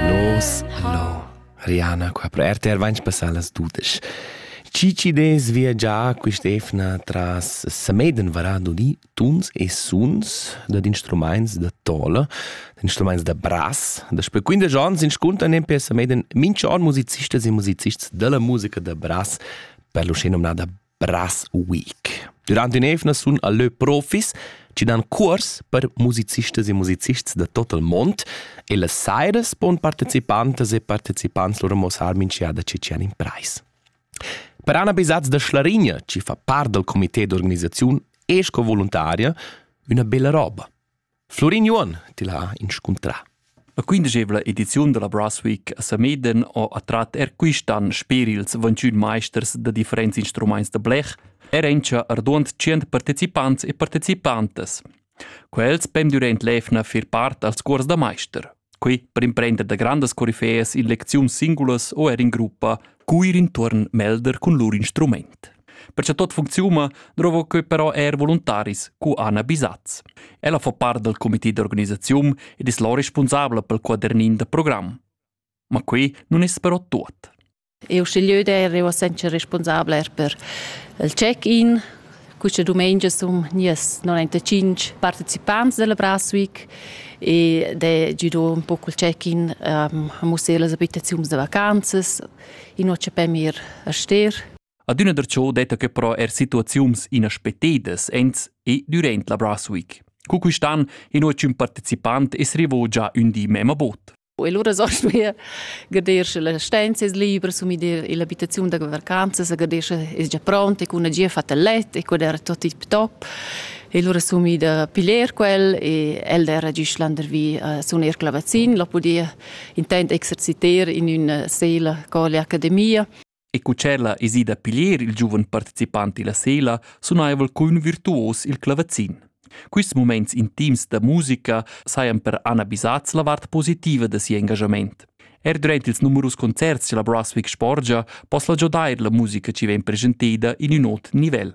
Los, lo. Rihanna qua pro RTR vains passà las dudesch. Chi chi dess viagiar quist'efna tras Sameden varado di tuns e suns da instrumaints da tola, da instrumaints da brass, da sper 15 ans inscuntan in per Sameden mincha on musicistas e musicists della musica da brass, per l'usché nomnada Brasweek. Durant in'evna sun a lö profis chi dan cuors per musicistas e musicists da tot il mond e las sairas pon partecipantas e partecipants lur amosar minchiada chi tschan in prais. Per Anna Bisaz da Schlarigna, chi fa part dal comité d'organisaziun e sco voluntaria, üna bella roba. Florin Juon til ha inscuntrà. La quindegevla ediziun della Brass Week a Sameden ho attrat er quistan sper ils 21 meisters da differents instrumaints da blech, er encha arduond 100 partecipants e partecipantas. Quels pem durant l'efna fer part als cuors da meister. Quei per imprender da grandas corifeas in lecziun singulas o er in gruppa cuir intuorn melder cun lur instrument. Per che tot funcziuma, drovo quei però er voluntaris cu Anna Bisaz. Ella fa part del comité d'organisazione ed es la responsabla pel quadernин da program. Ma quei non es però tuot. Eu schiglieu d'eir eu senza responsabla er per il check-in. Quista dumengia sun gnias 95 partecipants della Braswick e d'he giudo un po cul check-in ehm, a mussar las abitaziuns da vacanzas. Ino cha pem ir a Ster. Adüna darcho detta que però er situaziuns inaspettadas ins e durant la Braswick. Cu quist'an inua ch'ün partecipant es rivo già ün di memma bod. E lura sost mir gader sche la stenza es libra, sumi dir l'abitaziun da vacanzas, gader sche es già pronta, con una gia fatta let e quel era tot tip top. E lura sumi da piler quel e el era giust landervi a suner clavazin, lo podia intend exerciter in una sela con l'academia. e cu tschella es ida a piglier il giuven participant illa sela sunaivel cun virtuos il clavazin. Quists mumaints intims da musica sajan per Anna Bisaz la vart positiva da siu engagement. Er durant ils numerus concerts che la Brunswick sporgia poss la giodair la musica chi vegn presenteda in ün ot nivel.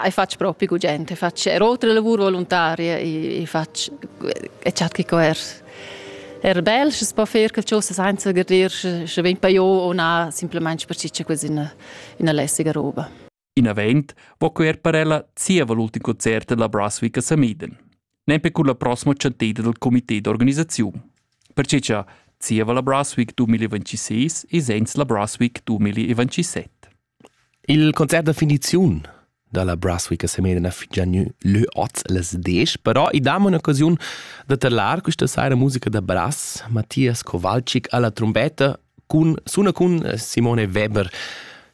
Hai fatg propi gugent, hai fatg er oltre lavur voluntaria, hai fatg e chat che er er bel, sche si po fer che cosa senza garder, sche vegn pa io o na, simplesmente per ciccia quasi una, una lässige roba. Inavent vo quer per ella zieva l'ultim concert della Brasswick a Samiden, nempe con la prossima centeda del comité d'organisazione. Perché cha zieva la Brasswick 2026 e sens la Brasswick 2027. Il concert da finiziun dalla Brasswick Semena fitgia gnü lö oz las desch, però i dam un'occasiun da terlar quista saira musica da brass. Mattias Kowalczyk alla trombetta cun suna cun Simone Weber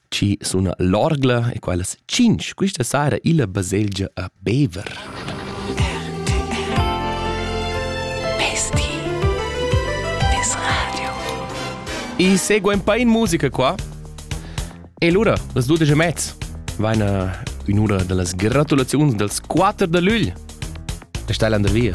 ci suna l'orgla e quellas cinc quista saira illa baselgia a Bever. Besti des radio. I segua un po' in musica qua E lura, las dudesch e mezz, vaina ün'ura da las gratulaziuns dals quatter da lügl da Steilander Via.